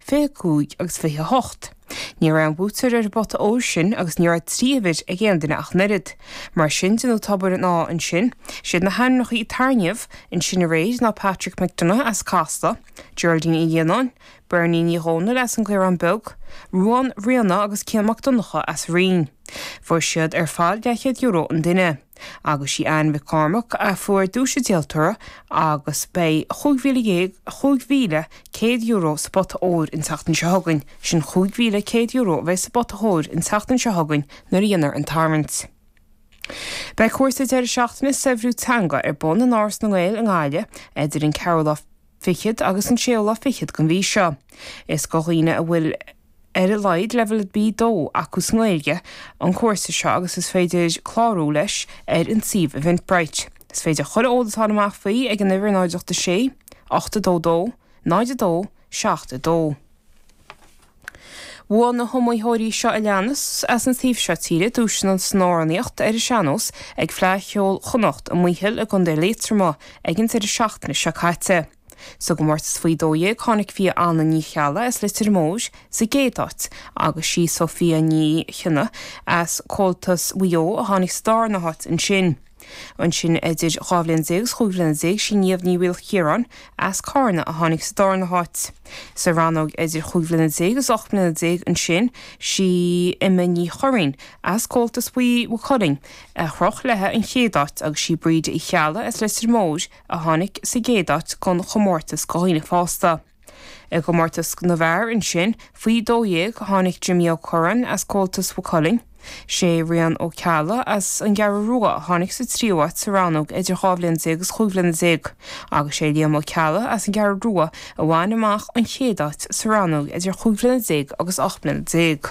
25 agus 28. Ní raibh aon bhuaiteoir ar an bpota óir sin agus ní raibh trí uimhir ag aon duine ach an oiread. Mar sin de ná Tobar an Áidh ansin. Is iad na hainmneacha a tarraingíodh ansin aréir, ná Patrick McDonagh as Casla, Geraldine Uí Lionnáin, Bernie Ní Dhomhnaill as an gCaorán Beag, Ruán, Riana agus Cian Mac Donncha as Rinn. Fuair siad ar fad €200 an duine. agus sí Anne Mhic Chormaic a fuair duais an díoltóra agus beidh cúig mhíle déag, €5,100 sa bpota óir an tseachtain seo chugainn. Sin €5,100 a bheidh sa bpota óir an tseachtain seo chugainn nuair a dhéanfar an tarraingt. Beidh cúrsa deireadh seachtaine 'Saibhriú Teanga' ar bun in Áras na nGael i nGaillimh idir an 4ú lá, fichead agus an séú lá fichead den mhí seo. Is do dhaoine a bhfuil ar a laghad leibhéal B2 acu sa nGaeilge an cúrsa seo agus is féidir clárú leis ar an suíomh Eventbrite. Is féidir chuile eolas a fháil amach faoi ag an uimhir 086 822 02 72. Bhuaigh na hiomaitheoirí seo a leanas, as an taobh seo tíre, duaiseanna san amhránaíocht ar an sean-nós ag Fleadh Cheoil Chonnacht i Maothail i gContae Liatroma ag an deireadh seachtaine seo caite. Sa gcomórtas faoi 12, tháinig Fia Anna Ní Cheallaigh as Leitir Móir sa gcéad áit agus sí Sophia Ní Chonaola as Comhaltas Mhaigh Eo a tháinig sa dárna háit ansin. Ansin idir dhá bhliain déag is chúig bhliana déag sí Niamh Ní Mhaoilchiaráin as Carna a tháinig sa dárna háit. Sa rannóg idir chúig bhliana déag is ocht mbliana déag ansin sí Emma Ní Churraoin as Comhaltas Mhaigh Cuilinn a chroch leithe an chéad áit agus sí Bríd Uí Cheallaigh as Leitir Móir a tháinig sa gcéad áit don chomórtas do dhaoine fásta. I gcomórtas na bhfear ansin, faoi 12, tháinig Jimmy Ó Curraoin as Comhaltas Mhaigh Cuilinn. Sé Rian Ó Ceallaigh as an gCeathrú Rua a tháinig sa tríú háit sa rannóg idir dhá bhliain déag is chúig bhliana déag agus sé Liam Ó Ceallaigh as an gCeathrú Rua a bhain amach an chéad áit sa rannóg idir chúig bhliana déag agus ocht mbliana déag.